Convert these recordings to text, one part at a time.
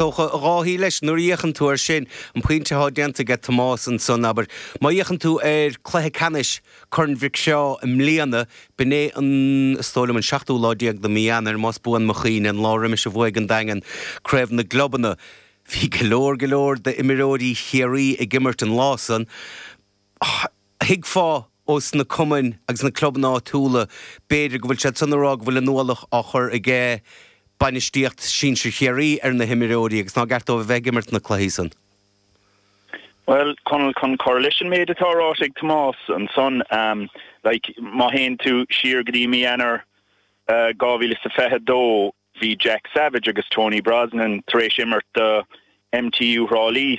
Is dócha a Dháithí leis nuair a fhéachann tú air sin. An pointe atá déanta aige Tomás ansan, abair, má fhéachann tú ar Cluiche Ceannais Corn Mhic Seá i mbliana, b'in é an, is dóigh liom, an seachtú lá déag de mhí Eanáir, más buan mo chuimhne, an lá roimis a bhuaigh an Daingean Craobh na gClubanna. Bhí go leor, go leor d'imreoirí Chiarraí ag imirt an lá san. Thuigfeá ó sna cumainn agus na clubanna áitiúla b'fhéidir go bhfuil siad san a rá go bhfuil an-ualach á chur ag bainistíocht sinsir Chiarraí ar na himreoirí agus nár cheart dóibh a bheith ag imirt na cluichí san. Bhuel, Conall, chun cur leis an méid atá ráite ag Tomás ansan, like, má théann tú siar go dtí mí Eanáir 2022 bhí Jack Savage agus Tony Brosnan tar éis imirt do MTU Thrá Lí.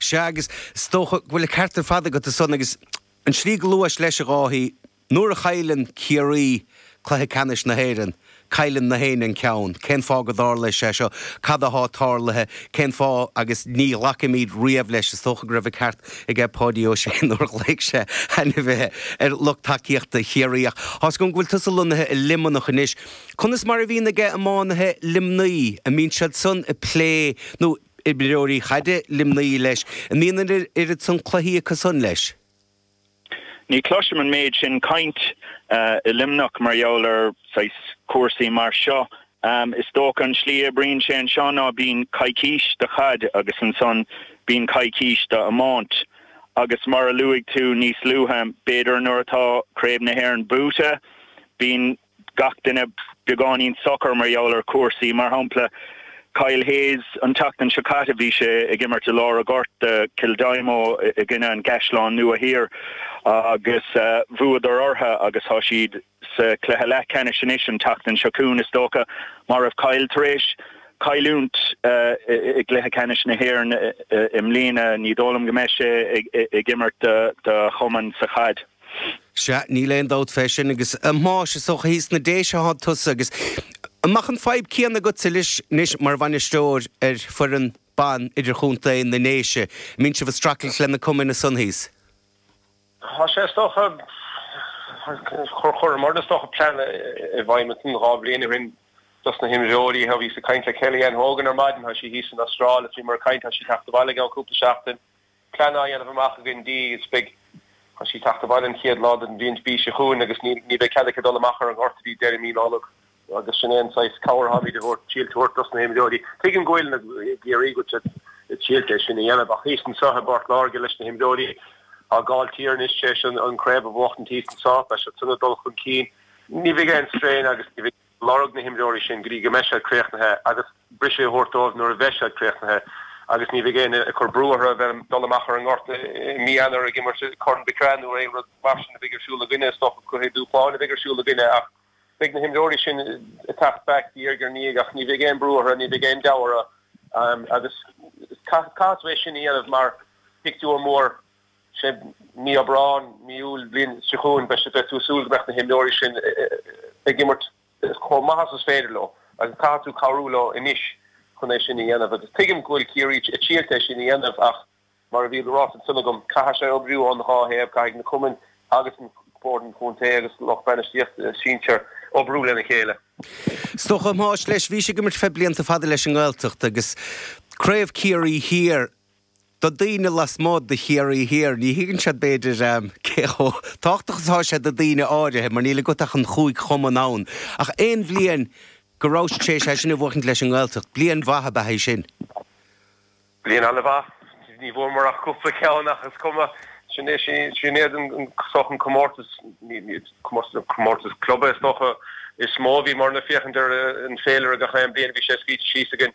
Sea, agus is dócha go bhfuil an ceart ar fad agat ansan, agus an slí go luais leis, a Dháithí, nuair a chailleann Ciarraí cluiche ceannais na hÉireann, cailleann na héinne an ceann. Cén fáth go dtarla sé seo? Cad athá tarlaithe? Cén fáth? Agus ní ghlacaimíd riamh leis, is dócha go raibh an ceart aige Páidí Ó Sé nuair a ghlaoigh sé ainmhithe ar lucht tacaíochta Chiarraí. Ach tá's agam go bhfuil tusa lonnaithe i Luimneach anois. Conas mar a bhíonn ag iománaithe Luimnigh? An mbíonn siad san ag plé nó. imreoirí chaide, Luimnigh, leis. An mbíonn an oiread san cluichí acu san leis? Ní chloisim an méid sin cainte i Luimneach mar gheall ar, saghas, cúrsaí mar seo. Is dócha an slí a oibríonn sé anseo ná bíonn coicís do chaid agus ansan bíonn coicís do iomáint. Agus mar a luaigh tú níos luaithe, b'fhéidir nuair atá Craobh na hÉireann buaite, bíonn. gach duine beagáinín socair mar gheall ar chúrsaí. Mar shampla, Kyle Hayes, an tseachtain seo caite bhí sé ag imirt i lár a' ghoirt do Kildimo i gcoinne an gCaisleán Nua Thiar agus bhuadar orthu agus tá siad sa chluiche leathcheannais anois. An tseachtain seo chugainn is dócha má raibh Kyle tar éis cailliúint i gcluiche ceannais na hÉireann i mbliana, ní dóigh liom go mbeidh sé ag imirt do chumann sa chaid. Sea, níl aon dabht fé sin, agus a Thomáis, is dócha thíos sna Déise atá tusa, agus an mbeadh an fadhb céanna agatsa leis, anois mar bhainisteoir ar foireann ban idirchontae na nDéise, an mbíonn sibh ag streachailt le na cumainn ansan thíos? Tá sé, is dócha, cur chuireamar is dócha plean i bhfeidhm ansan dhá bhliain ó shin dos na himreoirí, tha, bhíos ag caint le Kelly Ann Hogan ar maidin, tha sí thíos san Astráil, is bhíomar ag caint, tha sí ag teacht abhaile i gceann cúpla seachtain, plean á dhéanamh amach againn di agus beidh thá sí ag teacht abhaile an chéad lá den bhliain mí seo chugainn agus ní ní bheidh cead aici dul amach ar an ngort go dtí deireadh mí Nollag. Agus sin é an saghas cabhair a tháimid ag triailt a thabhairt dos na himreoirí. Tuigim go bhfuil na Ciarraígh ag triailt é sin a dhéanamh ach thíos anso i bPort Láirge leis na himreoirí ó Gailltír anois tar éis an an craobh a bhuachtaint thíos anso beidh siad san ag dul chun cinn ní bheidh aon strain agus ní bheidh lorg na himreoirí sin go dtí go mbeidh siad críochnaithe agus briseadh a thabhairt dóibh nuair a bheidh siad críochnaithe agus ní bheidh éinne ag cur brú orthu a bheith ag dul amach ar an ngort i mí Eanáir ag imirt i Corn Mhic Craith nó aon rud mar sin a bheidh ar siúl againne. Is dócha gur cluichí dúshláin a bheidh ar siúl againne ach beidh na himreoirí sin ag teacht back diaidh ar ndiaidh ach ní bheidh aon brú orthu, ní bheidh aon deabhadh orthu agus caithfidh tú é sin a dhéanamh mar phictiúr mór. sé mí Aibreán, mí Iúil an bhliain seo chugainn, beidh tú ag súil go mbeadh na himreoirí sin ag imirt chomh maith agus is féidir leo agus caithfidh tú cabhrú leo anois chun é sin a dhéanamh agus tuigim go bhfuil Ciarraí ag triailt é sin a dhéanamh ach mar a bhí á rá ansin agam, caithfidh sé oibriú ón dhá thaobh, caithfidh na cumainn agus an Bord an Chontae agus lucht bainistíochta sinsear oibriú lena chéile. Is dócha, a Thomáis, leis, bhís ag imirt le blianta fada leis an nGaeltacht agus Craobh Ciarraí Thiar, Do dhaoine lasmuigh de Chiarraí Thiar, ní thuigeann siad, b'fhéidir, cé chomh tábhachtach is atá sé do dhaoine áirithe, mar níl agat ach an chúig chumann ann. Ach aon bhliain go rabhais in ann é sin a bhuachaint leis an nGaeltacht. Bliain mhaith ab ea í sin. Bliain an-mhaith. Ní bhfuaireamar ach cúpla ceann ach is cuma. Sin é, sin iad an, is dócha an comórtas, comórtas club is dócha, is mó a bhíomar ag féachaint ar an bhféilire gach aon bhliain, bhí sé scríte síos againn.